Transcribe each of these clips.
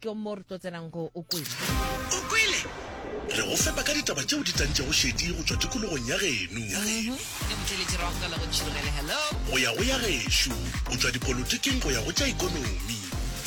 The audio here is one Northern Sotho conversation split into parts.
Ke mo re tlo tsenang go O Kwele. O Kwele! Re go fepa ka ditaba tšeo di tantšego šedi go tšwa tikologong ya geno. Ke mo tšweletše rago ka la go tšhirogele. Hello! Go ya go ya gešo, go tšwa dipolotiking go ya go tša ikonomi.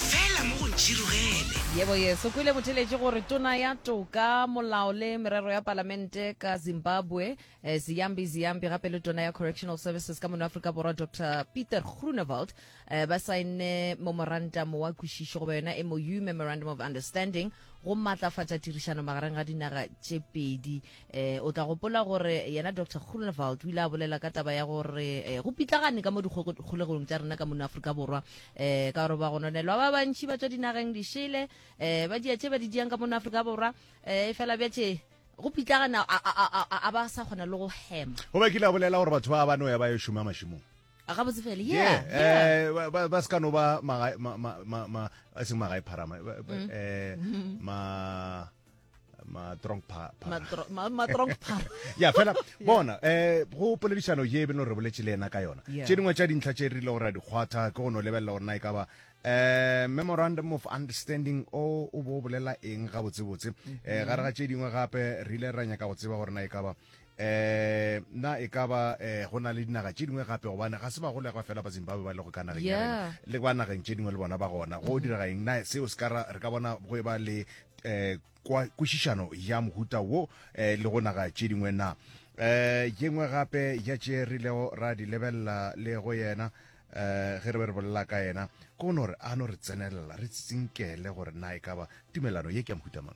Fela mo go ntšhirogele. Yebo, yes. O Kwele mo theletše gore Tona ya Toka, Molao le Merero ya Palamente ka Zimbabwe, Ziyambi Ziyambi, gape le Tona ya Correctional Services ka mono Afrika Borwa, Doctor Pieter Groenewald, eh, ba saenne momorantamo wa kwešišo goba yona mou memorandum of understanding go maatlafatša tirišano magareng ga dinaga tše pedi um o tla gopola gore yena dr grunewald o ile a bolela ka taba ya gore um go pitlagane ka mo dikgolegong tša rena ka mono aforika borwa um ka gore ba gononelwa ba bantšhi ba tswa dinageng dišele um ba dia tše ba di diang ka mono aforika borwa um e fela bjatše go pitlagana a ba sa kgona le go hema go ba kile a bolela gore batho ba ba no ya ba yo šoma mašimong a gabotse fele yeah, yeah, yeah. Eh, ba, ba se ka no ba magae ma, ma, ma, ma, a seng magae pharama ba, ba, mm. eh, ma matrong matrong ya fela bona eh go poledišano ye e beno re boletse le ena ka yona tše dingwe tša dintlha tše re ile gore a di kgwatha ke go no lebelela gore na e ka ba eh memorandum of understanding o o bo bolela eng ga botsebotse mm-hmm. eh gare ga tše dingwe gape re ile ra nyaka go tseba gore na e ka ba Um na e ka ba um go na le dinaga tše dingwe gape gobane ga se bagolegwa fela ba zimbabwe ba lego ka nageng ya rena Yeah. le ba nageng tše dingwe le bona ba gona go dira eng na seo se ka ra- re ka bona go e ba le um kwa- kwešišano ya mohuta wo um le go naga tše dingwe na um ye nngwe gape ya tše re ilego ra di lebelela le go yena um ge re be re bolela ka yena ko no re a no re tsenelela re tsinkele gore na e ka ba tumelano ye ke ya mohuta mang